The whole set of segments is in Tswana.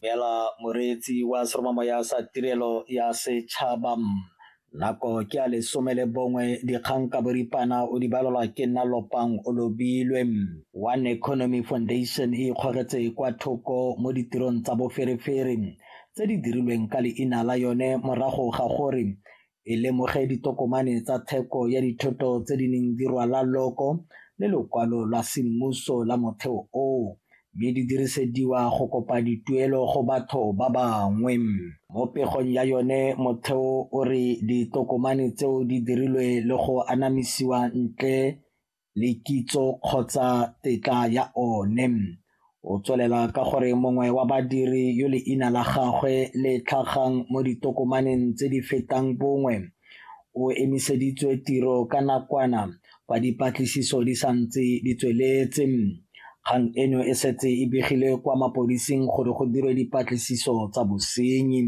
Beela moreetsi wa seromamo ya sa tirelo ya setšhaba nako ke a lesome le bongwe dikgang ka boripana o di balelwa ke nna lopang o lobilwe one economy foundation e ikgogetse kwa thoko mo ditirong tsa boferefere tse di dirilweng ka leina la yone morago ga gore e lemoge ditokomane tsa theko ya dithoto tse di neng di rwala loko le lokwalo lwa semmuso la motheo oo mme di dirisediwa go kopa dituelo go batho ba bangwe. Mo pegong ya yone motheo o re ditokomane tseo di dirilwe le go anamisiwa ntle le kitso kgotsa tetla ya one. O tswelela ka gore mongwe wa badiri yo leina la gagwe le tlhagang mo ditokomaneng tse di fetang bongwe o emiseditswe tiro ka nakwana fa dipatlisiso di sa ntse di tsweletse. Kgang eno e setse e begile kwa mapodising gore go dirwe dipatlisiso tsa bosenyi.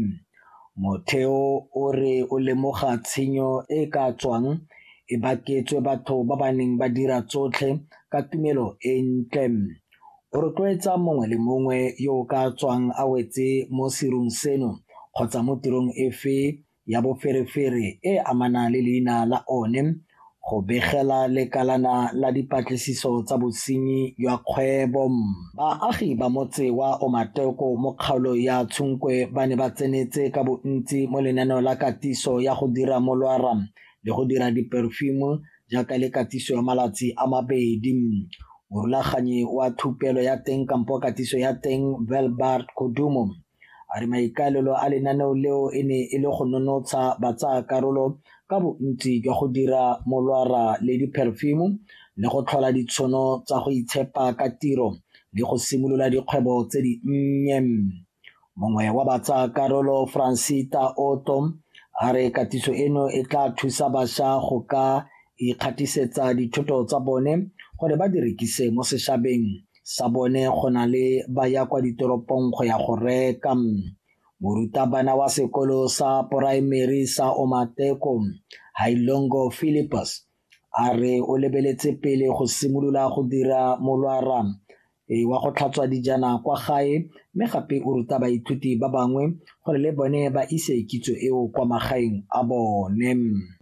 Motheo o re o lemoga tshenyo e e ka tswang e baketswe batho ba ba neng ba dira tsotlhe ka tumelo e ntle. O rotloetsa mongwe le mongwe yo o ka tswang a wetse mo serung seno kgotsa mo tirong efe ya boferefere e e amanang le leina la one go begela lekalana la dipatlisiso tsa bosenyi jwa kgwebo. Baagi ba motse wa Omateko mo kgaolo ya Tshunkwe ba ne ba tsenetse ka bontsi mo lenaneo la katiso ya go dira molwara le go dira diperfume jaaka le katiso ya malatsi a mabedi. Morulaganyi wa thupelo ya teng kampo katiso ya teng Velbert Kodumo A re maikaelelo a lenaneo leo e ne e le go nonotsha batsaakarolo ka bontsi jwa go dira molwara le dipherefimo le go tlhola ditshono tsa go itshepa ka tiro le go simolola dikgwebo tse di nnye. Mongwe wa batsaakarolo Francita Otto a re katiso eno e tla thusa bašwa go ka ikgatisetsa dithoto tsa bone gore ba di rekise mo sešabeng sa bone go na le ba ya kwa ditoropong go ya go reka morutabana wa sekolo sa poraemeri sa omateko hailongo philippus a re o lebeletse pele go simolola go dira molwara e wa go tlhatswa dijana kwa gae mme gape o ruta baithuti ba bangwe gore le bone ba ise kitso eo kwa magaeng a bone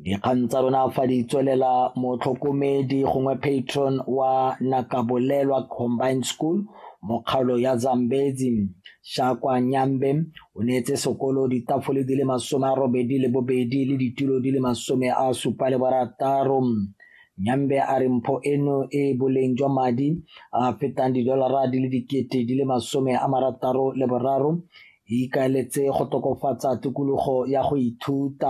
dikgang tsa rona fa di tswelela motlhokomedi gongwe patron wa nakabolelwa combined school mo kgaolo ya zambezi shakwa nyambe o neetse sekolo ditafole di le masome a robedi le bobedi le ditulo di le masome a supa le barataro nyambe a re mpho eno e boleng jwa madi a fetang didolara di le dikete di le masome a marataro le boraro e ikaeletse go tokofatsa tikologo ya go ithuta.